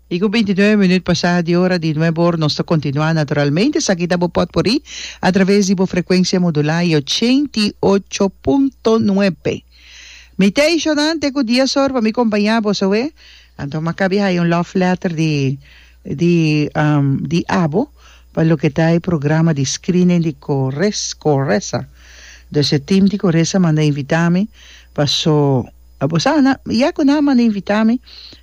I ku bintinuebe minüt pasá di ora di nuebor nos ta kontinuá naturalmente. Esaki ta bo pòt por oí a traves di bo frekuensia modulá i ochenta i ocho punto nuebe. Mi ta ishonante ku dies or pa mi kompañá bo, soe? Anto mi a kabi haya un love letter di di di abo pa loke ta e programa di screening di Corres Coresa. Dor se tim di Coresa manda invitá mi pa so. Bosa na ya cu nan a manda invita mi,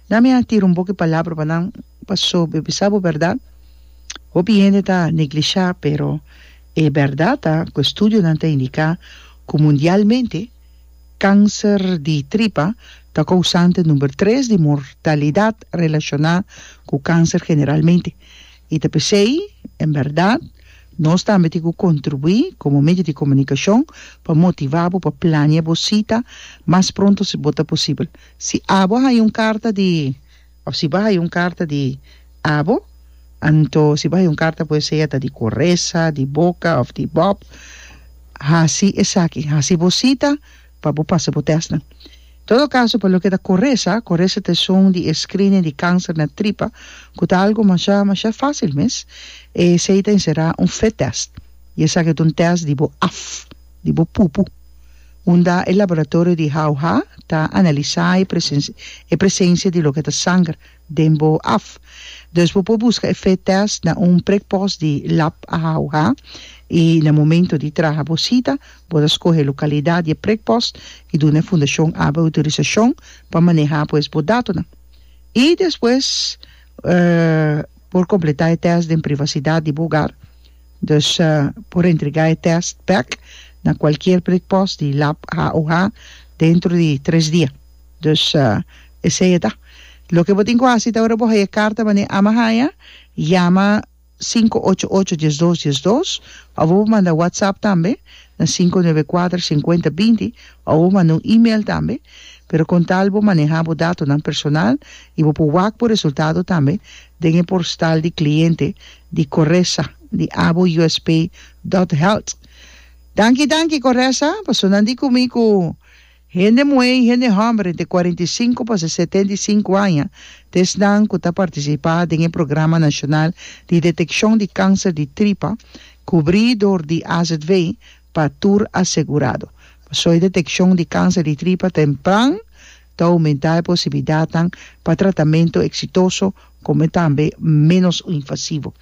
nan mi a tira un boki palabra pa nan, paso mi bisa bo berdad, hopi hende ta neglisha, pero e berdad ta cu estudionan ta indica cu mundialmente cancer di tripa ta cousante number tres di mortalidad relaciona cu cancer generalmente. I ta p'esei, en bèrdat, nos tambe tin ku kontribuí komo medio di komunikashon pa motivá bo pa plania bo sita mas pronto si bo ta posibel. Si abo haya un karta di òf si bo haya un karta di abo, anto si bo haya un karta puede ser ta di Coresa, di Boca òf di Bob, hasi esaki, hasi bo sita. pa bo pasa bo tèstnan. Todo kaso, pa loke ta koresa, koresa ta esun di e screening di kanser na tripa ku ta algu masha masha fásil mes. Esei ta enserá un fit test i esaki ta un test di bo af di bo pupu unda e laboratorio di Hauha ta analisá e presensia di loke ta sanger den bo af. Dus bo por busca e fit test na un prekpost di lab a houga y na momento di traha bo cita bo ta scohe e localidad di e prekpost y duna e fundacion ABBA autorisacion pa maneha pues bo datonan. Y despues por completa e test den privacidad di bo hogar. Dus por entrega e test bek na cualkier prekpost di lab a houga dentro di tres dia. Dus esei e ta. Loke bo tin ku hasi ta ora bo haya e karta manera ama haya, yama sinku ocho ocho dies dos dies dos òf bo por manda whatsapp tambe na sinku nuebe kuater senkuenta binti òf bo por manda un email tambe pero kon tal bo maneha bo datonan personal i bo por wak bo resultado tambe den e porstal di kliente di Coresa di abo usp dòt health. Danki danki Coresa, pasobra nan di ku mi ku Hende muhé i hende hòmber entre cuarenta i cinco pa se setenta i cinco aña ta esnan ku ta partisipá den e programa nashonal di detekshon di kanser di tripa kubrí dor di AZV pa tur asegurado. Pasó e detekshon di kanser di tripa tempran ta oumentá e posibilidatnan pa tratamentu eksitoso kome tambe ménos invasivo.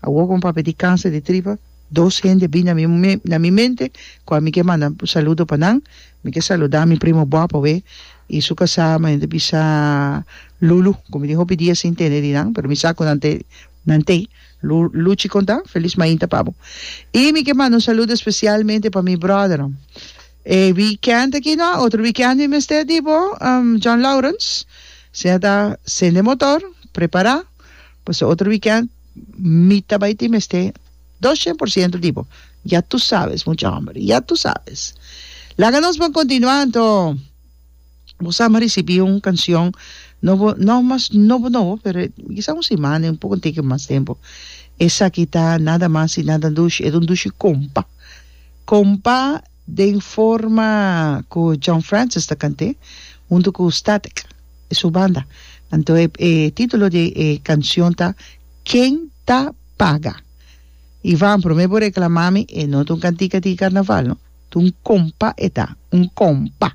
Awor ku un papia di kanser di tripa. Dos hende a bini na mi na mi mente kua mi ke manda saludo pa nan, mi ke saluda mi primo guapo awé i su kasá mi a bisa Lulu ku mi tin hopi dia sin tende di nan pero mi sa ku nan te nan te Lu Luchi konta felis mainta pa bo i mi ke manda un saludo spesialmente pa mi bròdernan e wikènt aki no otro wikènt mi mester di bo John Laurens siña ta sende motor prepará. Pasobra otro weekend mi ta bai tin mester dos cien por ciento di bo. Ya tu sabes, mucha homber, ya tu sabes. Laga nos bon continua anto bo sa bo a ricibi un cancion nobo, no mas nobo nobo pero kisa un simana, un poco antica mas tempo. Esaki ta nada mas y nada dushi, e ta un dushi compa. Compa. Den forma ku John Francis ta kant'é, huntu ku Static e su banda. Anto e título di e kanshon ta Ken Ta Paga? Ivan, promé bo reklamá mi, e no ta un kantika di karnaval, no. Ta un kompa e ta, un kompa.